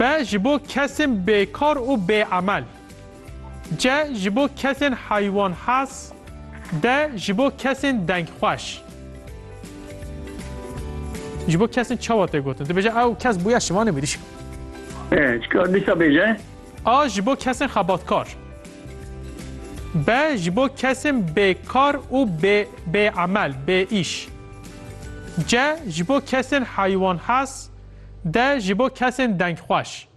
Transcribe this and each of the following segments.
B ji bo kesên bêkar û bêemel. C ji bo kesên heywanhas. D ji bo kesên dengxweş. Ji bo kesên çawa tê gotin? Dibêje ew kes bûye şivanê mirîşk. Ee, çikar dîsa bêje? A ji bo kesên xebatkar. B ji bo kesên bêkar û bê bêemel, bêîş. C ji bo kesên heywanhas. De ji bo kesên dengxweş.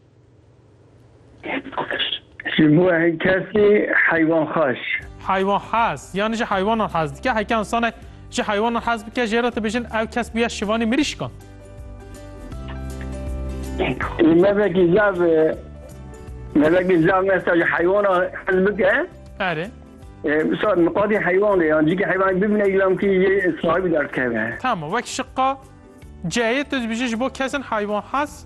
Ji bo kesê heywanxweş. Heywan hez, yan ji heywanan hez dike. Heke însanek ji heywanan hez bike jê re dibêjin ew kes bûye şivanê mirîşkan. Mevekî zav mevekî zav mesta ji heywana hez bike. Erê. Misal miqadî heywanê yan cikî heywanê bibîne îlam kî jê sahibî derdikeve. Tamam wek şiqa Ceyê tu dibêjin ji bo kesin heywanhaz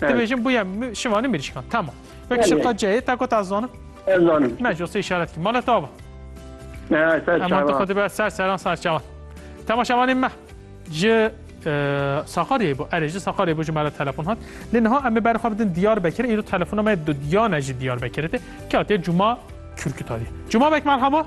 dibêjin bûye şivanî mirîşkan. Tamam. Wek şiqa ceyê te ku ta zanim? Ez zanim. Me josê işaret kir. Mala tava. Eman tu xwedî be ser seran ser çavan. Temaşevanê me ji Sakaryayê bû erê ji Sakaryayê bû ji me re telefon hat. Lê niha em ê berxwe bidin Diyarbekirê îro telefona me diyane ji Diyarbekirê tê. Katiye Cuma Kürkütayê. Cuma bek merhaba.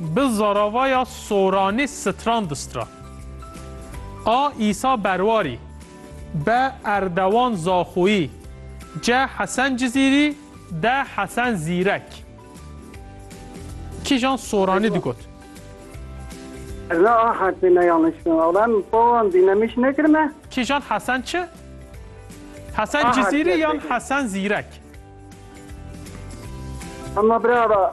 Bi zaravaya soranî stran distra. A Îsa Berwarî, be Erdewan Zaxoyî, ce Hesen Cizîrî, de Hesen Zîrek. Kîjan soranî digot. Ez ne a herfê ne yanlış kirin. Ala em pawan dî ne miş nekirine. Kîjan Hesen çi? Hesen Cizîrî yan Hesen Zîrek? Ama bira